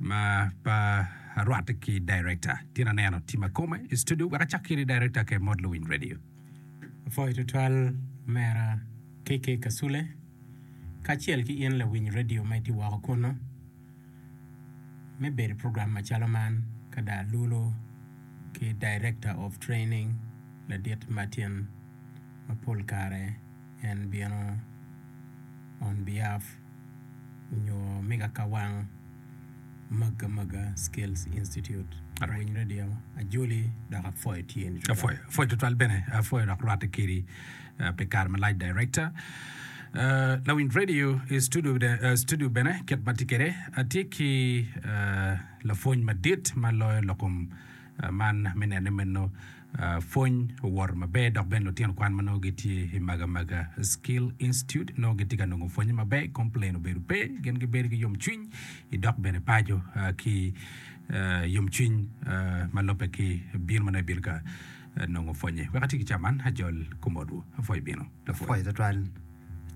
Ma pa rwatte ki director tin aneno tim akome i studio wek acak kiri director ke mod luwiny radio. Apwoyo tutwal mera KK Kasule kacel ki in lawiny radio ma itye woko kunu me bedo program macalo man ka dong alulo ki director of training ladit Martin ma pol kare en bino on behalf nyo me kakawang magga magga skills institute awiny radio ajoli dok apwoyo tyeni apwoyo apwoyo tutwal bene apwoyo dok rwatte kedi uh, pi kare malac director Uh, lawiny radio i studio, de- uh, studio bene kit ma tye kede atye ki uh, lapwony madit ma loyo lokum uh, man me nene meno Pwony owoto maber dok bene lutino kwan ma nongo gitye i Magamaga Skill Institute nongo gitye ka nongo pwonye maber, complain obedo pe, gin gibedo ki yomcwiny i dok bene paco ki yomcwiny ma lubbe ki bino ma nongo ibino ka nongo pwonye. Wek ati ki ca man, ajol kom odwu. Apwoyo bino. Lapwony. Apwoyo tutwal.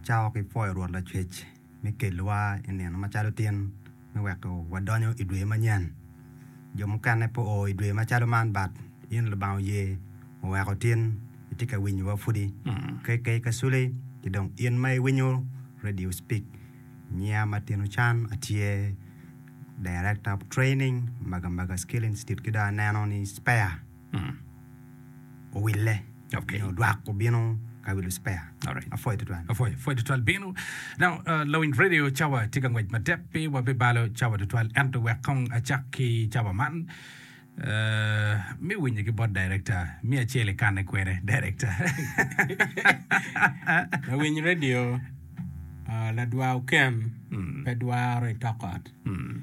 Cako ki pwoyo Rwot Lacwec. me kelowa i nino macalo tin me weko wadonyo i dwe manyen. Jo mukene pe oo i dwe macalo man but in Lubanga oye oweko tin itye ka winyowa pudi. KK Kasuli ki dong in ma iwinyo Radio Speak. Nyinga Martin Ochan atye Director of Training Maga Maga Skill Institute ki dong aneno ni Spare. owille okay. nyo dwak obino ka wilo spare right. apwoyo tutwal apwoyo apwoyo tutwal bino now uh, lawin radio cawa tye ka ngwec matek pi wabibalo cawa tutwal ento wek kong acak ki cawa man Uh, mi winyo ki bot director mi acel ikane kwene director lawiny radio uh, ladwa oken mm. pe dwaro itokot mm.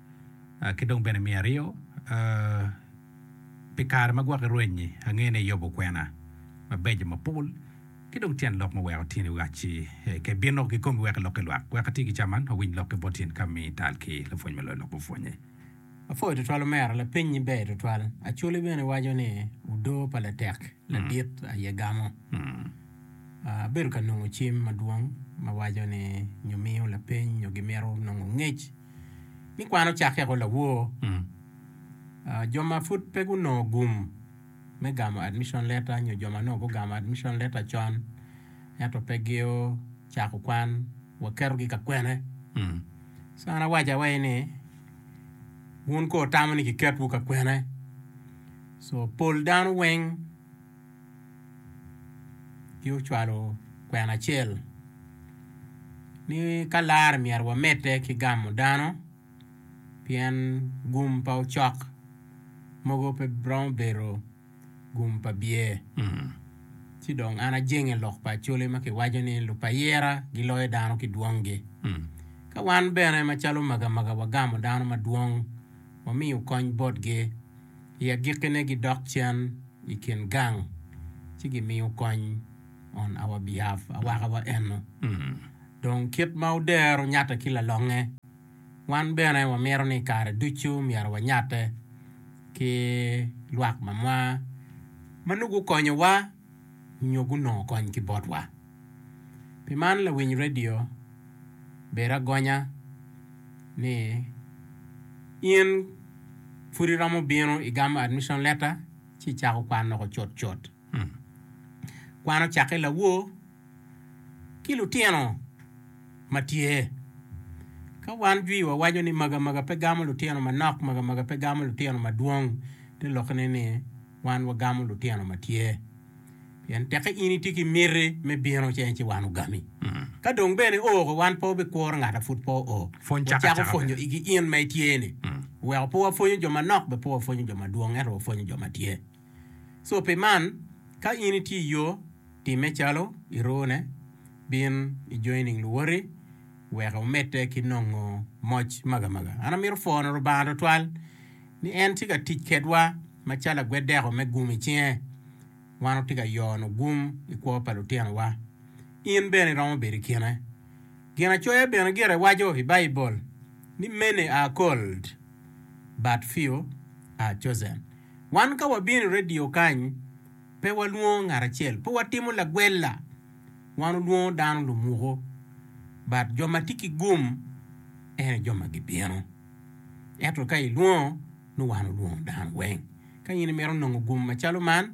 ki dong bene me aryo, pi kare ma gwokke rweny-nyi, angeyo ni iyobo kwena mabeco mapol ki dong tyen lok ma weko tyeni oacci ka ibino ki komi wek ilok ki lwak. Wek ati ki ca man, wawiny lok ki bot in ka mi tal ki lapwony ma loyo lok mupwonye. Apwoyo twatwal omera, lapeny-nyi ber twatwal. Acholi bene waco ni odoo pa latek ladit aye gamo. Abedo ka nongo cim madwong ma waco ni nyo miyo lapeny nyo gimito nongo ngec. ni kwan ocakke woko lawor. Jo ma pud pe gunongo gum me gamo admission letter nyo jo ma onongo gugamo admission letter con ento pe gucako kwan, waketogi ka kwene? Ci an awaco awaci ni wun kono wutamo ni kiketwu ka kwene? Co pol dano weng. ci ocwalo kwena acel ni ka lare myero wamede ki gamo dano pien gum pa ocok mogo pe romo bedo gum pa byer ci dong an ajenge i lok pa acholi ma kiwaco ni lok pa ayira giloyo dano ki dwongi ka wan bene macalo omegomega wagamo dano madwong. wamiyo kony botgi. I agikkine gidok cen i kin gang ci gimiyo kony on our behalf, awakawa eno. Dong kit ma odero nyatte ki lalonge, wan bene wamito ni kare ducu myero wanyatte ki lwak mamwa ma nongo gukonyowa. nyo gunongo kony ki botwa. Pi man lawiny redio bedo agonya ni in pud iromo bino igamo admission letter ci icako kwan loko cutcut. Kwan ocakke lawoo. ki lutino ma tye. Ka wan jwi wawaco ni magamaga pe gamo lutino manok, magamaga pe gamo lutino madwong, te lokkene ni wan wagamo lutino ma tye. Pien tekke in itye ki miti me bino ce ci wan ogami. Ka dong bene oko wan pe wabikuro ngat a pud pe oo. Wacako pwonyo igi in ma itye-ni. Weko pe wapwonyo jo manok, be pe wapwonyo jo madwong, ento wapwonyo jo ma tye. So pi man, ka in itye i yo, timme calo irone. Bin i jo nining luwoti wek omedde ki nongo moc magamaga? An amito pwono Lubanga twatwal ni en tye ka tic kedwa macalo lagweddeko me gum i cinge. Wan watye ka yono gum i kwo pa lutinowa. In bene iromo bedo i kine. Ginacoya bene gire waco i Baibul ni Many are called, but few are chosen. Wan ka wabino i redio kany, pe walwongo ngat acel, pe watimo lagwella. Wan olwongo dano lumuko, but jo ma tye ki gum ene jo ma gibino. Ento ka ilwongo, nongo wan olwongo dano weng. Ka in imito nongo gum macalo man,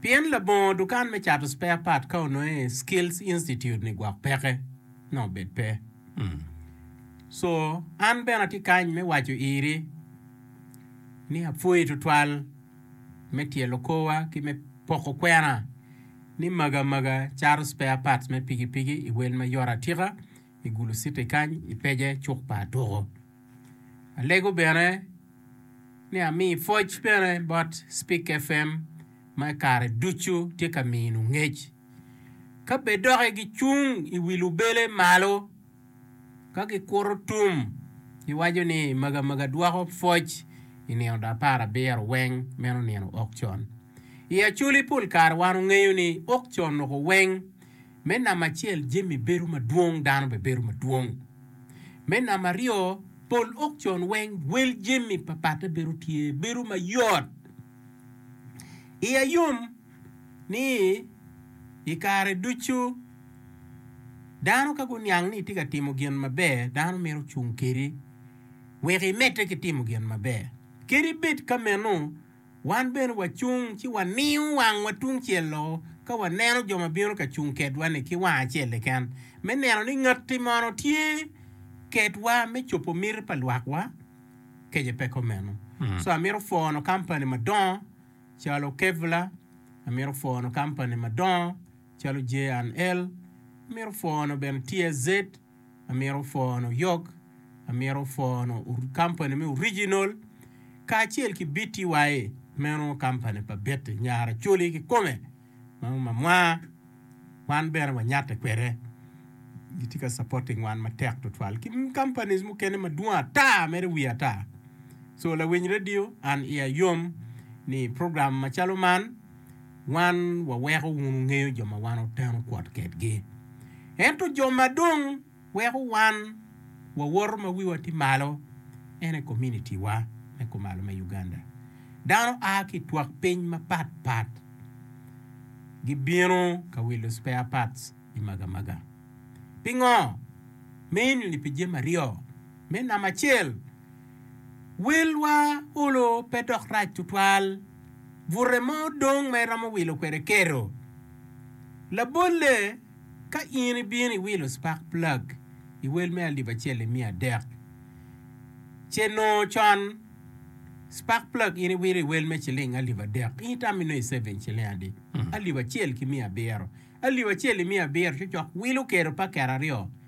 Pien labongo dukan me cato spare part ka ononge skills institute ni gwok peke na obed pe. Hmm. So an bene atye kany me waco iri ni apwoyi tutwal me tyelo korwa ki me poko kwena ni maga maga cato spare parts me pigipigi i wel ma yot atika i Gulu City kany i pece cuk pa Atuku. Alego bene ni ami pwoc bene bot Spik FM ma i kare ducu tye ka minu ngec. Ka bed doki gicung i wi lubele malo ka gikuto tum giwaco ni maga maga dwoko pwoc i nino da apar abiro weng meno nino okcon. I Acholi pol kare wan ongeyo ni okcon oko weng Me namba acel jami bedo madwong dano bene bedo madwong. Me namba aryo pol okcon weng wel jami papatte bedo tye bedo mayot. Iya yom ni i kare ducu dano ka guniang ni itye ka timo gin maber dano mito cung kedi wek imedde ki timo gin maber kadi bed ka meno. Wan bene wacung ci waningo wangwa tungcel-lo ka waneno jo ma bino ka cung kedwa-ni ki wang acel keken, me neno ni ngati mono tye kedwa me cobo miti pa lwakwa. Kece pe kumeno. So amito pwono kampani madongo calo Kevlar, amito pwono kampani madongo calo J and L, amito pwono bene TSZ, amito pwono yok, amito pwono kampani me original kacel ki BTY meno kampani pa Betty nyar Acholi kikome ma mamwa wan bene wanyatte kwede gitye ka supporting wan matek tutwal ki companies mukene madwong ata mere wiye ata so lawiny radio an iya yom ni program macalo man wan waweko wun wungeyo jo ma wan wuteno kwot kedgi. Ento jo ma dong weko wan wawoto ma wiwa tye malo ene komunitiwa me kumalo me Uganda. Dano a ki i twak piny mapatpat gibino ka wilo spare parts i Magamaga. Pingo? Mainly pi jami aryo, me namba acel, Wilwa olo pe dok rac tutwal. Bute mo dong ma iromo wilo kwede keto. Labolle, ka in ibino iwilo spark plug i wel me alip acel i miya adek, ce nongo con spark plug in iwilo i wel me ciling alip adek, in itamo inongo iseving ciling adi? Alip acel ki miya abiro. Alip acel i miya abiro cocok wilo keto paket aryo.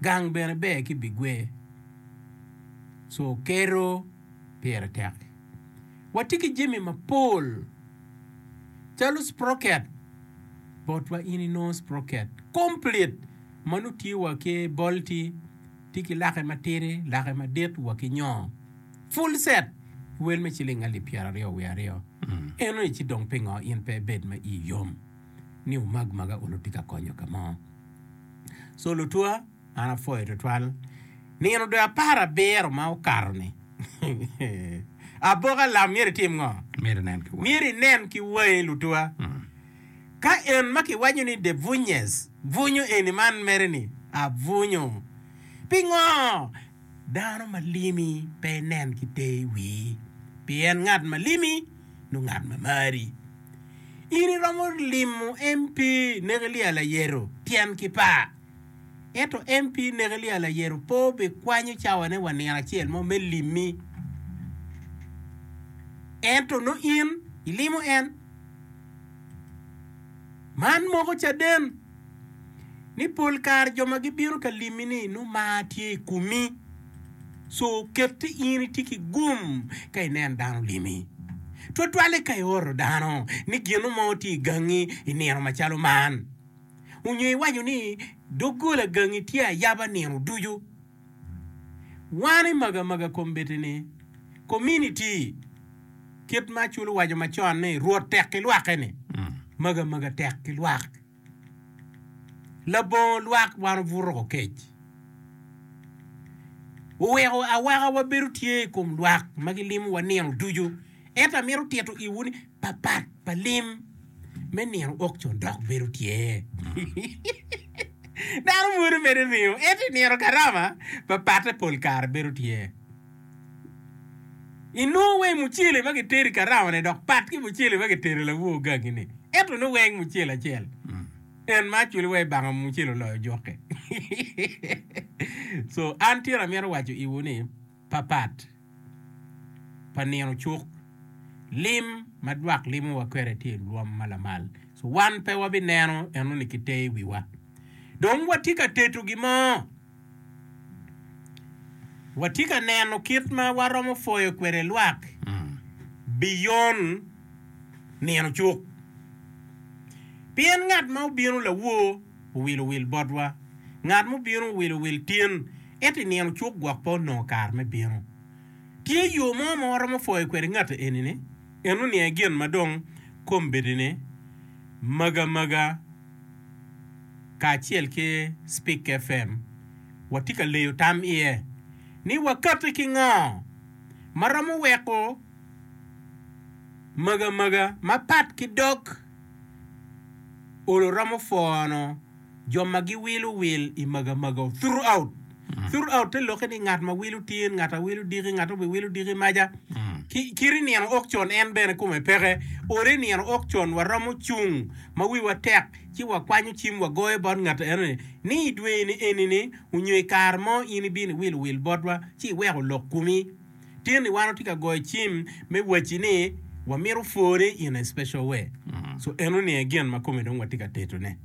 Gang bene ber ki bigwe, co kero pire tek. Watye ki jami mapol calo sprocket, botwa in inongo sprocket komplit ma nongo tye wa ki bolti, tye ki lake matidi, lake madit wa ki nyongo. Full set wel me ciling alip pyeraryo wiye aryo. Enoni ci dong pingo in pe ibed ma iyi yom? ni wumag maga onongo tye ka konyo ka mo. So lutwa, an apwoyo tutwal nino dwe apar abiro ma okato-ni. Aboka lam myero itim ngo? Myero inen ki wangi lutwa. Ka en ma kiwaco ni de bunnyes bunyo eni man mere-ni abunyo, pingo? Dano ma limi pe inen ki te i wii, pien ngat ma limi nongo ngat ma mari. In iromo limo MP Nekelia Layero tyen ki par. Ento MP Nekelia Layero pe obikwanyo cawane wa nino acel mo me limi. Ento nongo in ilimo en man moko caden. ni pol kare jo ma gibino ka limmi-ni nongo mar tye i komi. So kette in itye ki gum ka ineno dano limi, twatwalle ka ioro dano ni gino mo tye i gangi i nino macalo man, onyo iwaco ni doggola gangi tye ayaba nino ducu. Wan i magamaga kombeddi-ni, kominiti, kit ma Acul owaco macon ni, Rwot tek ki lwake-ni, magamaga tek ki lwak. Labongo lwak wan obuto ko kec. Oweko awaka wabedo tye i kom lwak ma gilimowa nino ducu. Ento amito tito iwu ni papat pa lim me nino ok con dok bedo tye. Dano mwodo bene ringo, ento i nino garama papatte pol kare bedo tye. Inongo weng mucele ma gitedo i garamane dok pat ki mucele ma gitedo i lawo gangine, ento ni weng mucele acel. En ma aculo wa i banga mucele oloyo jukke. So an tira amito waco iwu ni, papat pa nino cuk, lim ma dwak limowa kwede tye i lwom ma lamal. So wan pe wabineno enoni ki te i wiwa. Dong watye ka teto gin mo. Watye ka neno kit ma waromo pwoyo kwede lwak biyon nino cuk. Pien ngat ma obino lawor. owilo wil botwa. Ngat ma obino owilo wil tin, ento i nino cuk gwok pe onongo kare me bino. Tye yo mo ma waromo pwoyo kwede ngati eni-ni? Eno ni aye gin ma dong kombedine Maga Maga kacel ki Spik FM watye ka leyo tam iye, ni wakati ki ngo ma romo weko Maga Maga mapat ki dog. Olo romo foono jo ma giwilo wil i magamago, throughout. Throughout te lokke ni ngat ma wilo tin, ngat a wilo diki, ngat obi wilo diki maja. Ki, kiri nino ok con en bene kome peke. Olo i nino ok con waromo cung ma wiwa tek ci wakwanyo cim wagoyo bot ngat enoni ni i dwe-ni eni-ni onyo i kare mo in ibino iwilo wil botwa ci iweko lok kumi. Tini wan watye ka goyo cim me wacci ni wamito pwone in a special way. So eno ni aye gin ma kome dong watye ka teto ne.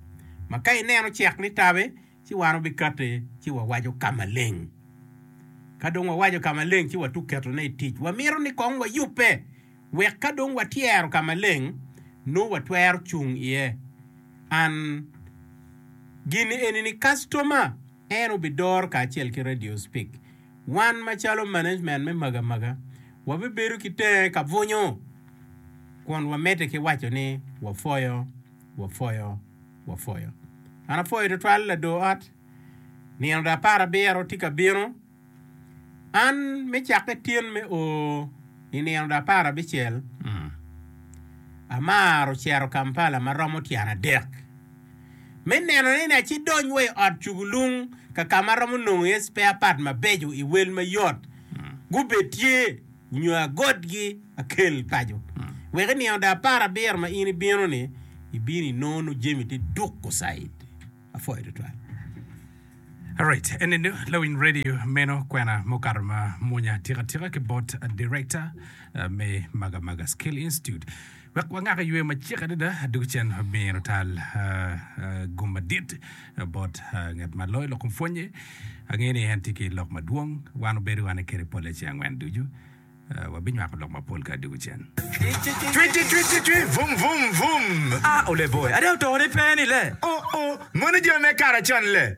Ma ka ineno cek ni tabe ci wan wabikate ci wawaco ka maleng. Ka dong wawaco ka maleng ci watuk keto ne i tic. Wamito ni kong wayubbe wek ka dong watyero ka maleng nongo watwero cung iye. An gini eni ni customer en obidor kacel ki radio speak. Wan macalo management me magamaga wabibedo ki tenge ka bunyu kun wamedde ki waco ni wapwoyo, wapwoyo, wapwoyo. An apwoyo tutwal lador ot, nino da apar abiro tye ka bino. An me cakke tin me o i nino da apar abicel, amaro cito Kampala ma romo tyen adek. me neno ni acdony wa i ot cugulung ka ka ma aromo nongo iye spare part mabeco i wel mayot. Gubed tye nyo agotgi akel paco. Wek i nino da apar abiro ma in ibino-ni, ibino inongo nongo jami tye duko caid. Apwoyo twatwal. Alright eni nongo lawiny radio meno kwena mukato ma mwonya atika tika ki bot director me Maga Maga Skill Institute. Wek wangak i yweyo macek adada, dog cen myero otal gum madit bot ngat ma loyo lok pwonnye. Angeyo ni en tye ki lok madwong. Wan obedo wane kwede polle ceng angwen ducu. Wabinywako lok mapol ka dog cen. Twi, twi, twi, twi, twi, vum, vum, vum. A, ole boe. Ada otore pe ni le? O, o, moni jo me kare acon le.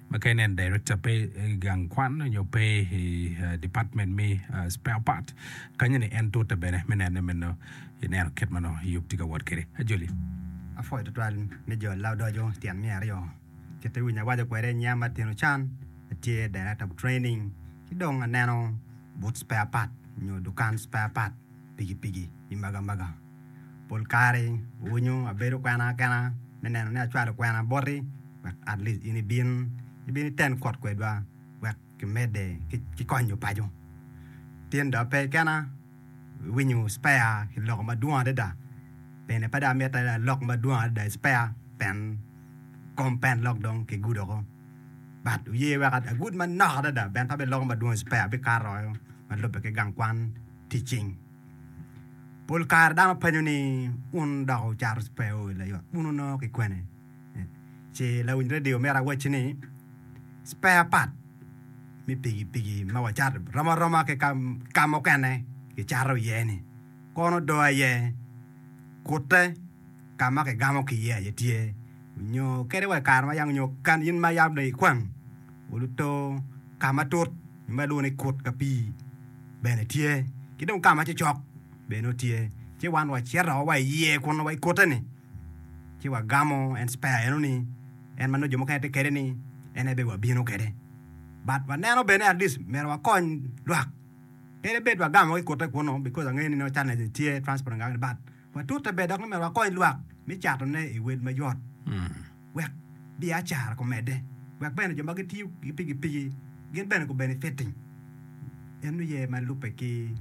ma kene en director pe i gang kwan nyo pe i department me spare part kanye ni en tute bene me nene meno ineno kit ma nongo Yub tye ka wot kwede ajoli. Apwoyo twatwal ni jo laodoco tyen miya aryo kit iwinyo awaco kwede nya matino can atye director of training ci dong aneno but spare part nyo dukan spare part. pikipiki i magamaga. Pol kare winyo abedo kwena kena me neno ni acwalo kwena boti wek at least in ibin ibin iten kot kwedwa wek kimedde ki konyo paco. Tin dong pe kena winyo spare kiloko madwong adada pene pe dong amitte ni alok madwong adada i spare pien kom pen lok dong kigudo woko but wuye wek agud manok adada pien pe abiloko madwong i spare abikato woko ma lubbe ki gang kwan. tic cing. Pol kare dano penyo ni wun dok wucato spare oil layot wun wunongo ki kwene? Ce lawiny radio myero awacci ni spare part me piki piki ma wacato rom aroma ki ka mukene kicato iye ni kono do aye kute ka ma kigamo ki iye aye tye nyo kede wa i kare ma yam nyo kan in ma yam dong ikwang wuluto ka matut ma lwongo ni kut ka pii bene tye, ki dong ka ma cocok bene nongo tye, ci wan wacito wa i iye kunnu wa i kute-ni, ci wagamo en cipea eno-ni, en ma nongo jo mukene tye kwede-ni, en aye bene wabino kwede. But waneno bene at least myero wakony lwak, pe bed wagamo ki kute kunnu, bikos angeyo ni nongo challenges tye, transport nangangani, but. Watute ber dok ni omyero wakony lwak me catone i wel mayot wek biacara kumedde, wek bene jo ma gitiyo ki pikipiki gin bene gubenefiting. En oye ma lubbe ki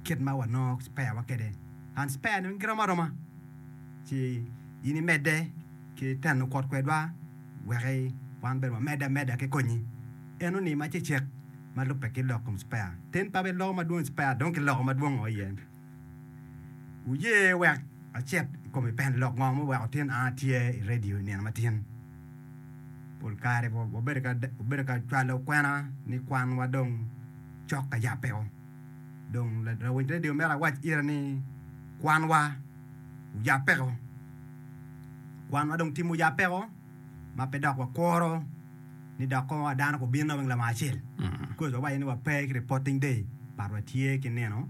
kit ma wanongo speyawa kwede, and speya-ni weng girom aroma ci in imedde ki teno kwot kwedwa wek wan bene wamedde ameda ki konyi. En onim acecek ma lubbe ki lok kom speya. Ten pa bene loko madwong i speya dong kiloko madwongo iye. Wuye wek acit i kom i pend lok ngo muweko tin a atye i redio i nino matin. Pol kare wabedo ka cwalo kwena ni kwanwa dong cok ka yabbeo. Dong lawiny redio mito awac ira ni kwanwa oyabbeko. Kwanwa dong timo yabbeko ma pe dok wakuro ni dok kong dano gubino weng lamal acel. Because wawaco ni wape ki reporting day but watye ki nino.